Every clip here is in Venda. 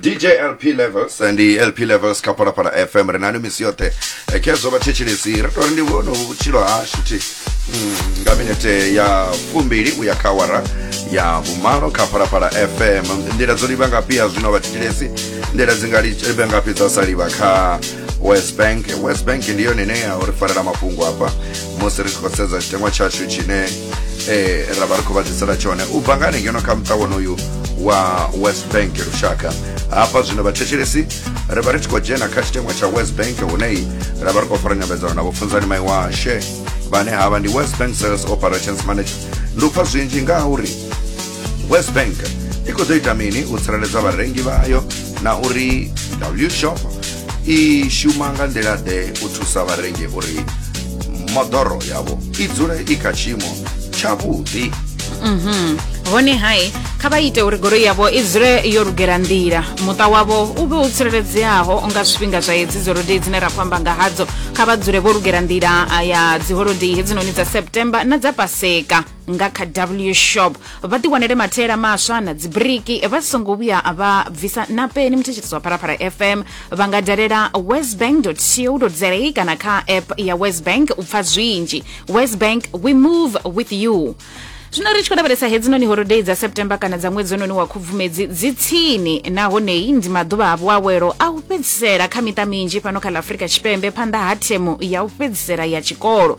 dj lp levels ndi lp levels kha phalaphala fm ri nani misi yoṱhe Eh, khezwo vhathetshelesi ri tori ndi vhone vhutshilo hashu thi Mm, nga minete ya fumbili uya kha wara ya vhumalo kha phalaphala fm nḓila dzo livha ngafhi ya zwino vhathetshelesi nḓila dzi nga livha ngafhi dza sa livha kha west bank west bank ndi yone ine ya uri farela mafhungo hafha musi ri tshi khou sedza tshiteṅwa tshashu tshine eh, ra vha ri khou vha ḓisela tshone u bva nga hanengeno kha muṱa wonoyu wa west bank lushaka hafha zwino vhathetshelesi ri vha ri tshi khou dzhena kha tshiteṅwa tsha west bank huneyi ra vha ri khou fara nyambedzano na vhofunzani mai washe vhane havha ndi west bank sales operations manager ndi u pfa zwinzhi nga ha uri west bank i khou ḓo ita mini u tsireledza vharengi vhayo na uri wshop i shuma nga nḓila-ḓe u thusa vharengi uri moḓoro yavho i dzule i kha tshiimo tshavhuḓi mhm. hone hai kha vha ite uri goloi yavho i dzule yo lugela nḓila muṱa wavho u vhe u tsireledzeaho nga zwifhinga zwa hedzi dzolodei dzine ra khou amba nga hadzo kha vha dzule vho lugela nḓila ya dziholodei hedzinoni dza september na dza paseka nga kha w shop vha ḓiwanele mathaela maswa na dzibiriki vha songo vhuya vha bvisa na peni muthetshedzo wa pharafara fm vha nga dalela westbank co za kana kha app ya westbank u pfa zwinzhi westbank we move with you zwino ri tshi khou lavhelesa hedzinoni holodei dza september kana dza ṅwedzi ononi wa khubvumedzi dzi tsini nahonei ndi maḓuvha a vhuawelo a u fhedzisela kha miṱa minzhi fhano kha ḽa afurika tshipembe phanḓa ha themu ya u fhedzisela ya tshikolo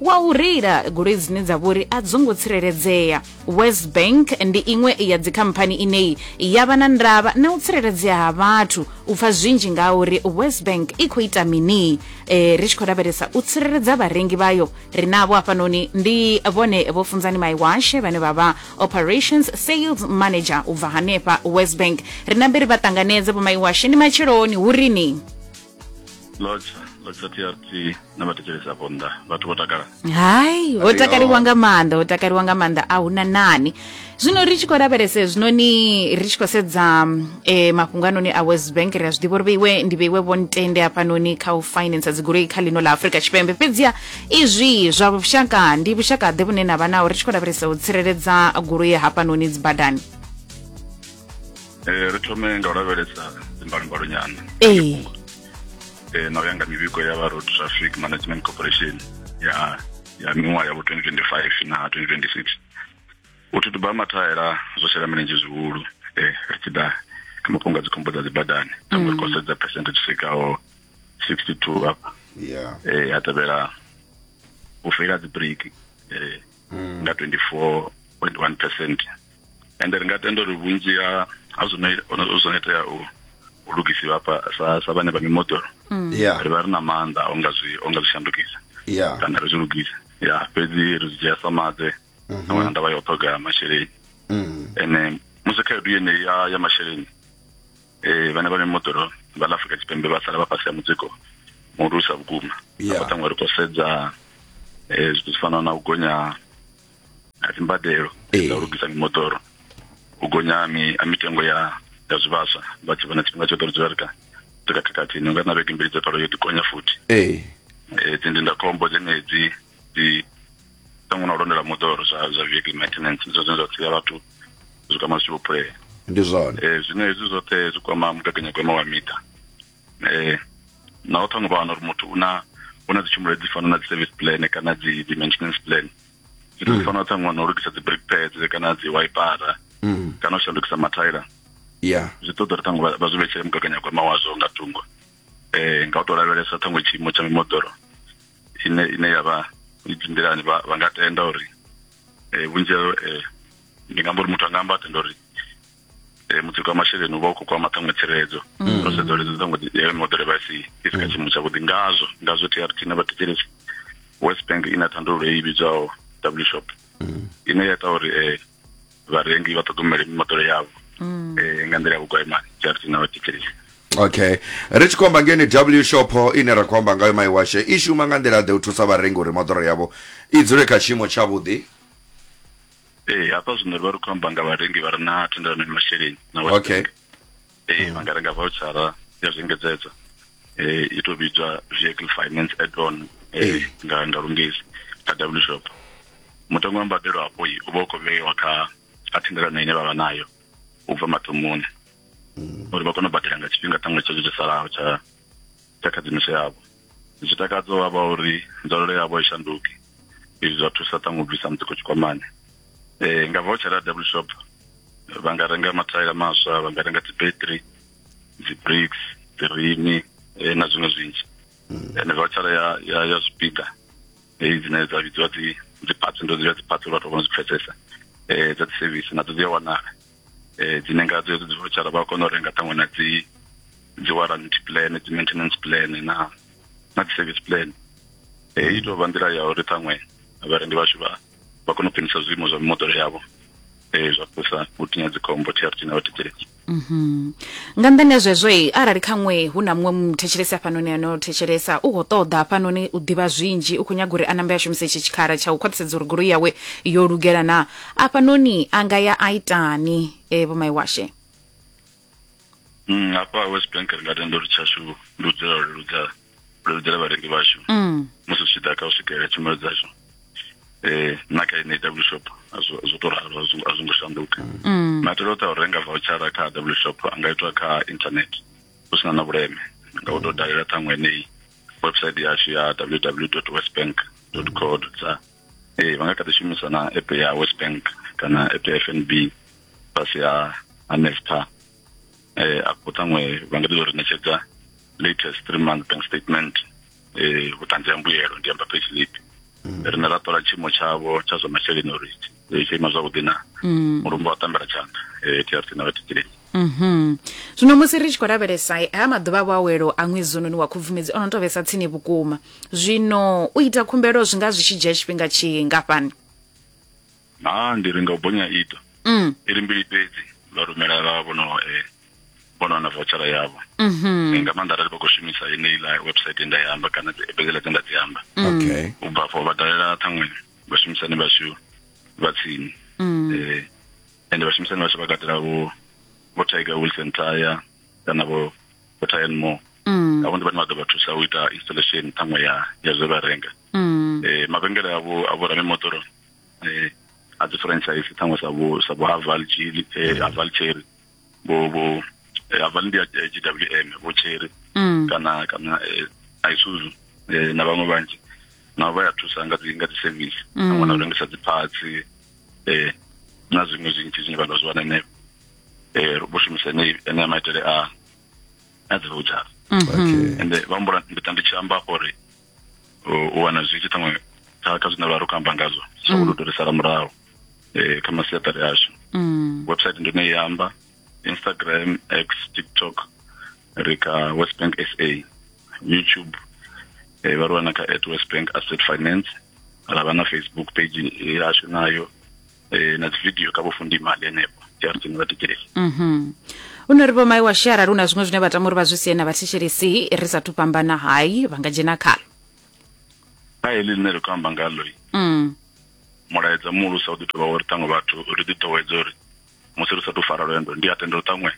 wa u reila goloi dzine dza vhori a dzo ngo tsireledzea west bank ndi iṅwe ya dzikhamphani ineyi ya vha na ndavha na u tsireledzea ha vhathu u pfa zwinzhi nga uri west bank i khou ita mini e, ri tshi khou lavhelesa u tsireledza vharengi vhayo ri navho hafhanoni ndi vhone vho funzani maiwashe vhane vha vha operations sales manager u bva hanefha west bank ri nambe ri vha ṱanganedze vho maiwashe ndi matsheloni hu rini lodza lodza trt na vhathetshelesi afho nnḓa vhathu vho takala hai ho takaliwa nga maanḓa ho takaliwa nga maanḓa a huna nani zwino ri tshi khou lavhelese zwinoni ri tshi khou sedza e, mafhungo anoni a west bank ri a zwi ḓivha uri vheiwe ndi vheiwe vho ntende hafhanoni kha u finance dzigoloi kha ḽino ḽa afurika tshipembe fhedziha izwi zwa vhushaka ndi vhushaka ḓe vhune na vha naho ri tshi khou lavhelesa u tsireledza goloi hafhanoni dzibadani eh ri thome nga u lavhelesa dzimbalumbalo nyana ee eh na u ya nga mivhigo ya vha road traffic management corporation ya ya miṅwaha ya vho 2025 na 2026 u thutuba ha mathaela zwo shela milenzhe zwihulu eh ri tshi ḓa kha mafhungo a dzikhombo dza dzibadani ri khou sedza percentage i swikaho 62 hafha ya eh ha tevhela u feila dzi break eh nga 24.1 percent and ri nga tenda uri vhunzhi ha ha zwine zwine itea u u lugisiwa hafha sa sa vhane vha mimoḓoro mm. yeah. ri vha ri na maanḓa o nga zwi o nga zwi shandukisa yeah. kana ri zwi lugisa ya fhedzi ri zwi dzhia sa maḓe mm -hmm. na ndavha ya u ṱhoga masheleni mm. ene musi khaedu yene ya ya masheleni eh vhane vha mimoḓoro vha Afrika Tshipembe vha sala vha fhasi ya mutsiko muhulusa vhukuma yeah. ri khou sedza eh zwithu zwi fana na u gonya a dzi mbadelo dza u lugisa mimoḓoro u gonya ha mitengo ya ya zwivhaswa vha tshi vhona tshifhinga tshoṱhe uri zwi vha ri kha ri kha khakhathi ni nga na vhege mbili dza palo yo ḓi gonya futhi ee dzi ndindakhombo dzenedzi dzi ṱangwe na u londela moḓoro zwa zwa vehicle maintenance zwo zwine zwa sia vhathu zwi kwama zwi tshi vho phulea ndi zwone zwine hezwi zwoṱhe zwi kwama mugaganyagwama wa miṱa eh na u thonga vhana uri muthu una una dzi tshumelo dzi fana na dzi service plan kana dzi dzi maintenance plan dzi mm. fana tsa ṅwana u lugisa dzi brake pads kana dzi wiper mm. kana u shandukisa mathaila ya zwi ṱoḓa uri ṱhaṅwe vha zwi vhetshele mugaganyagwama wazwo nga thungo eh nga u tou lavhelesa ṱhaṅwe tshiimo tsha mimoḓoro ine ine ya vha i dzimbilani vha nga tenda uri eh vhunzhi eh ndi nga mbo uri muthu a nga amba tenda uri eh, mutsiko wa masheleni u vha u khou kwama ṱhaṅwe tsireledzo mm. ro sedza uri ṱhaṅwe eh, modele vha si i si kha mm. tshiimo tshavhuḓi ngazwo ngazwo trt na vhathetshelesi west bank i na thandululo i vhidzwaho w shop mm. ine ya ita uri um vharengi vha ṱhogomele mimoḓoro yavho um nga nḓila ya vhugwaimani trt na vhathetshelesi okay ri tshi khomba ngeni w shop ine ra khou amba ngayo mai washe i shuma nga nḓila ḓe u thusa vharengi uri moḓoro yavho i dzule kha tshiimo tshavhuḓi ee eh, hafha zwino ri vha ri khou amba nga vharengi vha re na thendelano ya masheleni na okay ee eh, vha nga renga vouchara ya zwiengedzedzo eh i to vhidzwa vehicle finance add on eh nga nga lungezi kha w shop mutengo wa mbadelo hapo i u vha u khou vheiwa kha kha thendelano ine vha vha nayo u bva mathomoni mm. uri vha kone u badela nga tshifhinga ṱhaṅwe tsho tsho salaho tsha tsha khadzimiso yavho zwi takadza vha vha uri nzwalelo yavho i shanduki izwi zwa thusa ṱhaṅwe u bvisa mutsiko tshikwamani um nga voucher ya double shop vha nga renga mathaila maswa vha nga renga dzibattery dzibricks dzirini eh, na zwiṅwe zwinzhi hmm. ende voucher ya ya ya zwipiḓa heyi dzine dza vhidziwa dzi dzi parts ndo dzi vha dzi parts vhathu vha no zwi pfesesa um dza dzi service nadzo dzi a wanala eh dzine nga dzo dzi vouchara vha kona u renga ṱhaṅwe na dzi dzi warranty plan dzi maintenance plan na na dzi service plan eh i tou vha nḓila ya uri ṱhaṅwe vharendi vhashu vha vha kona u khwinisa zwiimo zwa mimoḓoro yavho eh zwa thusa u tinya dzikhombo TRT na vhathetshelesi Mhm. nga nḓani ya zwezwo i arali khaṅwe hu na muṅwe muthetshelesi hafhanoni ano thetshelesa u khou ṱoḓa hafhanoni u ḓivha zwinzhi u khou nyaga uri a nambe a shumise itshi tshikhala tsha u khwaṱhisedza uri goloi yawe yo lugela na afhanoni a nga ya a itani e, vho maiwashe Mm, hafha west bank ri nga tenda uri tshashu ndi u dzula u leludza u leludzela vharengi vhashu mm. musi zwi tshi ḓa kha u swikelela tshumelo dzashu eh na kha ine w shop a zwo zwo to ralo a zwo a zwo ngo shanduka Mm. maitele oṱhe a u renga vouchara kha w shop a nga itwa kha internet hu sina na vhuleme nga u tou dalela ṱhaṅwe heneyi website yashu ya www westbank co za ee vha nga kha ḓi shumisa na app ya west bank kana app ya f n b fhasi ha ha nesta eh afho ṱhaṅwe vha nga ḓi uri ṋetshedza latest three month bank statement eh vhuṱanzi ha mbuyelo ndi amba pay slip mm. rine ra ṱola tshiimo tshavho tsha zwa masheleni uri eh, tsho ima zwavhuḓi na mm. mulumba wa tambela tshanḓa eh trc na vha tikilenyi Mhm. Zwino musi ri tshi khou lavhelesa eh, ha maḓuvha a vhuawelo a ṅwedzi ononi wa khubvumedzi ono to vhesa tsini vhukuma. Zwino u ita khumbelo zwi nga zwi tshi dzhia tshifhinga tshingafhani? naa ndi renga u bonya ita Mm. i ri mbili fhedzi vha rumela vha vhono eh, vhono wana vouchara yavho Mhm. Eh, nga maanḓa arali vha khou shumisa yeneiḽa website ye nda i amba kana dzi- ebedziḽa dze nda dzi amba okay u bva afho vha dalela ṱhaṅwe vhashumisani vhashu vha tsini Mm. Eh, ende vhashumisani vhashu vha katela vho vho tiger wilson tire kana vho vho tire and more mm. avho ndi vhane vha ḓo vha thusa u ita installation ṱhaṅwe ya ya zwe vha renga mm. eh, mavhengele avho avho ramimoḓoro eh, a dzi franchise ṱhaṅwe sa vho sa vho haval chili eh, haval cherry vho vho eh, haval ndi ya eh, gwm vho cherry mm. kana kana eh, isuzu eh, na vhaṅwe vhanzhi navho vha ya thusa nga dzi nga dzi service mm. ṱhaṅwe na u rengisa dzi parts eh na zwiṅwe zwinzhi zwine vha ḓo zwi wana henefho eh vho shumisa ene maitele a a dzi voucher mhm. ende vha mbula ndi tandi tshi amba uri u wana zwi tshi ṱhaṅwe kha kha zwine vha ri khou amba ngazwo zwa u mm. ludorisala murahu eh kha masiaṱari ashu mm. website ndi ne ya amba instagram x tiktok ri kha west bank sa youtube eh, vha ri wana kha at west bank asset finance ra vha na facebook page yashu nayo eh, na dzividio kha vhofundimali henefho jarsin vha tikeleli Mhm. u no ri vho mai wa shea arali hu na zwiṅwe zwine vha tama uri vha zwi sie na vhathetshelesi ri sathu fhambana hai vha nga dzhena khalo kha heḽi ḽine ri khou amba ngalo Mm. mulaedza muhulusa u ḓi tovha uri ṱhaṅwe vhathu ri ḓi ḓowedza uri musi ri sathu fara lwendo ndi a tenda uri ṱhaṅwe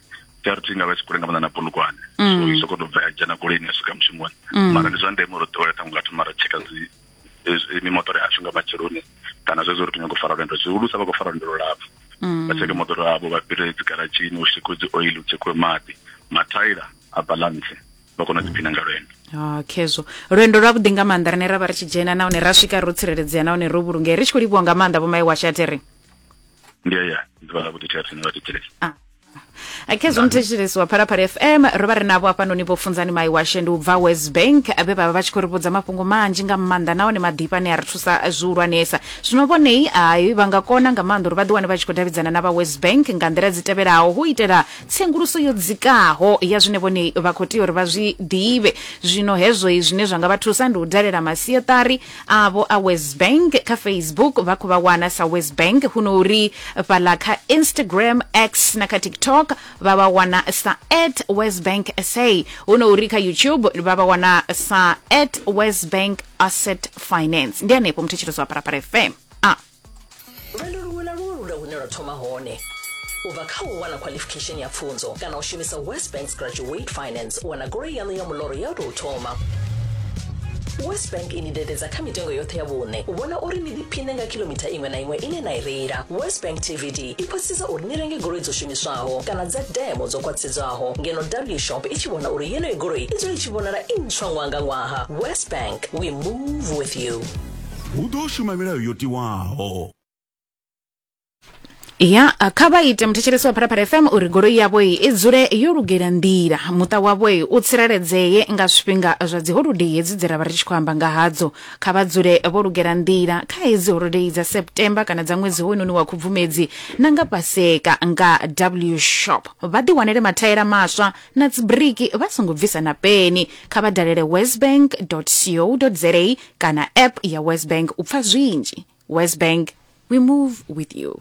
trp nga vha tshi kule nga maanḓa na bulugwane so i soko to bva ya dzhena goloini ya swika mushumoni mara ndi zwa ndeme uri ḓowela ṱhaṅwe nga thoma ra tsheka dzi eh, mimoṱoro yashu nga matsheloni kana zwezwo uri tinyanga u fara lwendo zwihulusa vha khou fara lwendo lulapfu vha tsheke moḓoro avho vha fhire dzigaratshini u shekwe dzi oil u tshekwe maḓi mathaila a balance vha kona u ḓiphina nga lwendo Ah, khezwo lwendo lwavhuḓi nga maanḓa rine ra vha ri tshi dzhena nahone ra swika ro tsireledzea nahone ro vhulungea ri tshi khou livhuwa nga maanḓa vho mai washatere ndi aya ndi vha vhuḓi tshathu ni vha thetshelesi khe zwo muthetshelesi wa phalaphala fm ro vha ri navho hafhanoni vho funzani mai washe ndi u bva west bank vhe vha vha vha tshi khou ri vhudza mafhungo manzhi nga maanḓa nahone maḓifha ane a ri thusa zwihulwanesa zwino vhonei ai vha nga kona nga maanḓa uri vha ḓiwane vha tshi khou davhidzana na vha west bank nga nḓila dzi tevhelaho hu itela tsenguluso yo dzikaho ya zwine vhonei vha khou tea uri vha zwi ḓivhe zwino hezwoi zwine zwa nga vha thusa ndi u dalela masiaṱari avho a Wesbank kha Facebook vha khou vha wana sa Wesbank huno uri fhaḽa kha Instagram, X na kha TikTok vha vha wana sa at Wesbank SA huno uri kha YouTube vha vha wana sa at Wesbank Asset Finance. Ndi hanefho muthetshelo zwa Parapara FM. Ah. lwendo luṅwe na luṅwe lu na hune lwa thoma hone u bva kha u wana qualification ya pfunzo kana u shumisa west banks graduate finance u wana goloi yaṋu ya muloro ya u tou thoma west bank i ni dededza kha mitengo yoṱhe ya vhuṋe u vhona uri ni ḓiphine nga kilomitha iṅwe na iṅwe ine na i reila west bank tvd i khwaṱhisedza uri ni renge goloi dzo shumiswaho kana dza demo dzo khwaṱhisedzwaho ngeno w shop i tshi vhona uri yeneyo goloi i dzule i tshi vhonala i ntswa ṅwaha nga ṅwaha west bank we move with you hu ḓo shuma milayo yo tiwaho ya kha vha ite muthetshelesi wa pharapara fm uri goloi yavho i dzule yo lugela nḓila muṱa wavho u tsireledzee nga zwifhinga zwa dzi holodei hedzi dzi ra vha ri tshi khou amba nga hadzo kha vha dzule vho lugela nḓila kha hedzi holodei dza september kana dza ṅwedzi hoyunoni wa khubvumedzi na nga paseka nga w shop vha ḓiwanele mathaela maswa na dzibiriki vha songo bvisa na peni kha vha dalele westbank co za kana app ya wesbank u pfa zwinzhi wesbank we move with you